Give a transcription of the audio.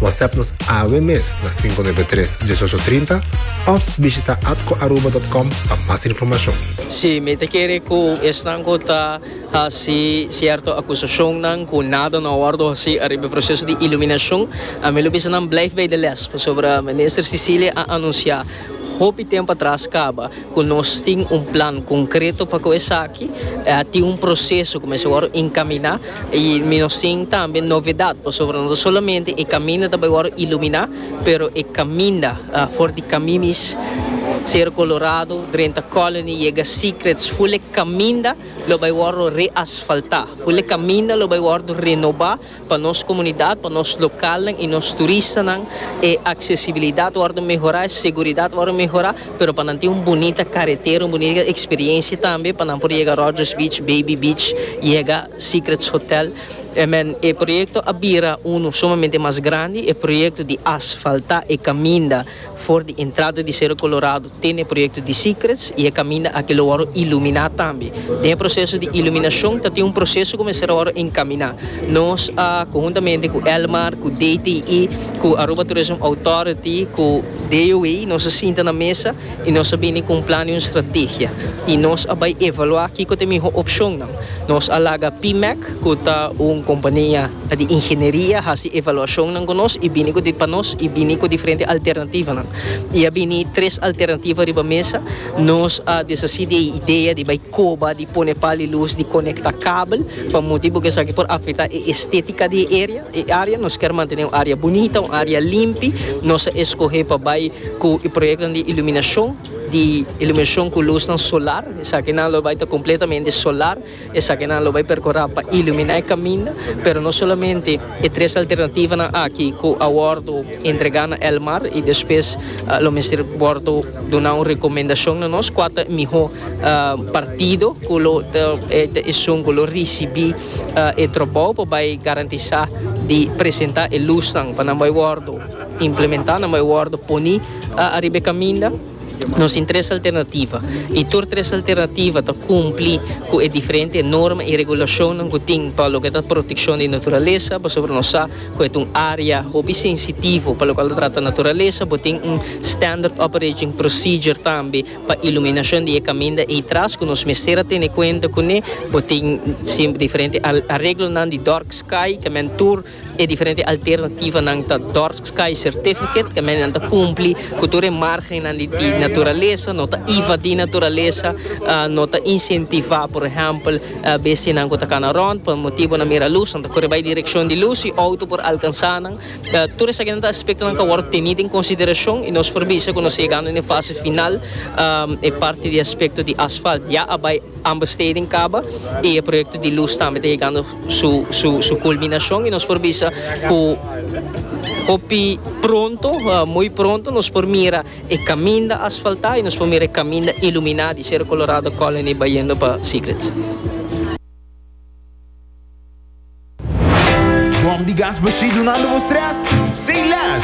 WhatsApp nos awe mes na 593 1830 of bishita atcoaruba.com pa mas informacion. Si, mi ta kere ku esnan ku ta hasi sierto akusashonnan ku nada no a wòrdu hasi ariba e proseso di iluminashon, ami lo bisa nan bleif bei de lès, pasobra Minister Cecilia a anunsiá. Hopi tempu atras kaba ku nos tin un plan konkreto pa ku esaki. A tin un proseso ku mester wòrdu enkaminá i mi nos tin tambe novedat pasobra no ta solamente e kaminda ta bai wòrdu iluminá pero e kaminda for di Kamimis, Sero Kolorado, Drenta Colony yega Secrets ful'e kaminda lo bai wòrdu reasfaltá, ful'e kaminda lo bai wòrdu renobá. Pa nos komunidat, pa nos lokalnan i nos turistanan e aksesibilidat wòrdu mehorá, e seguridat wòrdu mehorá, pero pa nan tin un bunita karetera, un bunita eksperiensia tambe pa nan por yega Rogers Beach, Baby Beach, yega Secrets Hotel. Amen, e proyekto a bira unu sumamente mas grandi, e proyekto di asfaltá e kaminda. For di entrada di Sero Kolorado tin e proyekto di Secrets i e kaminda aki lo wòrdu iluminá tambe. Den e proseso di iluminashon ta tin un proseso ku mester a wòrdu enkaminá. Nos a konhuntamente ku Elmar, ku DTI, ku Aruba Tourism Authority, ku DOA nos a sinta na mesa i nos a bini ku un plan i un strategia. I nos a bai evaluá kiko ta e mihó opshonnan. Nos a laga PMEC cu ta un compania di ingenieria haci evaluacionnan cu nos y bini cu di pa nos y bini cu diferente alternativanan. Y a bini tres alternativa riba mesa, nos a deshaci di e idea di bay coba di pone pal y luz di conecta kabel pa motibo cu esaki por afecta e estetica di e area, e area. Nos ker mantene un area bunita, un area limpi. Nos a escoge pa bay cu e proyectonan di iluminacion. di iluminacion cu luznan solar, esakinan lo bay ta completamente solar, esakinan lo bay percora pa ilumina e caminda, pero no solamente e tres alternativanan aki cu a wordo entrega na Elmar y despues lo mester wordo duna un recomendacion na nos cua ta e miho partido cu lo ta esun cu lo ricibi e trabao pa bay garantisa di presenta e luznan pa nan bay wordo implementa, nan bay wordo poni. a ariba e kaminda nos tin tres alternativa i tur tres alternativa ta kumpli ku e diferente norma i regulashonnan ku tin pa loke ta protekshon di naturalesa pasobra nos sa ku e ta un área hopi sensitivo pa lokal ta trata naturalesa bo tin un standard operating procedure tambe pa iluminashon di e kaminda ei tras ku nos mester a tene kuenta kuné bo tin diferente areglonan di dark sky ke men tur. E diferente alternativanan ta Dorpskeizer Tifiket, ku men ta kumpli ku tur e margennan di naturalesa, no ta ivadí naturalesa, no ta insentivá por ehèmpel bestianan ku ta kana rònt pa motibunan mira lus, nan ta kore bai direkshon di lus i outo por alkansá nan. Tur esakinan ta aspektonan ku a wòrdu tení den konsiderashon i nos por bisa ku nos ta yegando den e fase final. E parti di aspekto di asfalt ya a bai ambesteden kaba i e proyekto di lus tambe ta yegando. su su su culminacion y nos por bisa cu hopi pronto muy pronto nos por mira e caminda asfalta y nos por mira e caminda ilumina di Cerro Colorado Colony bayendo pa Secrets.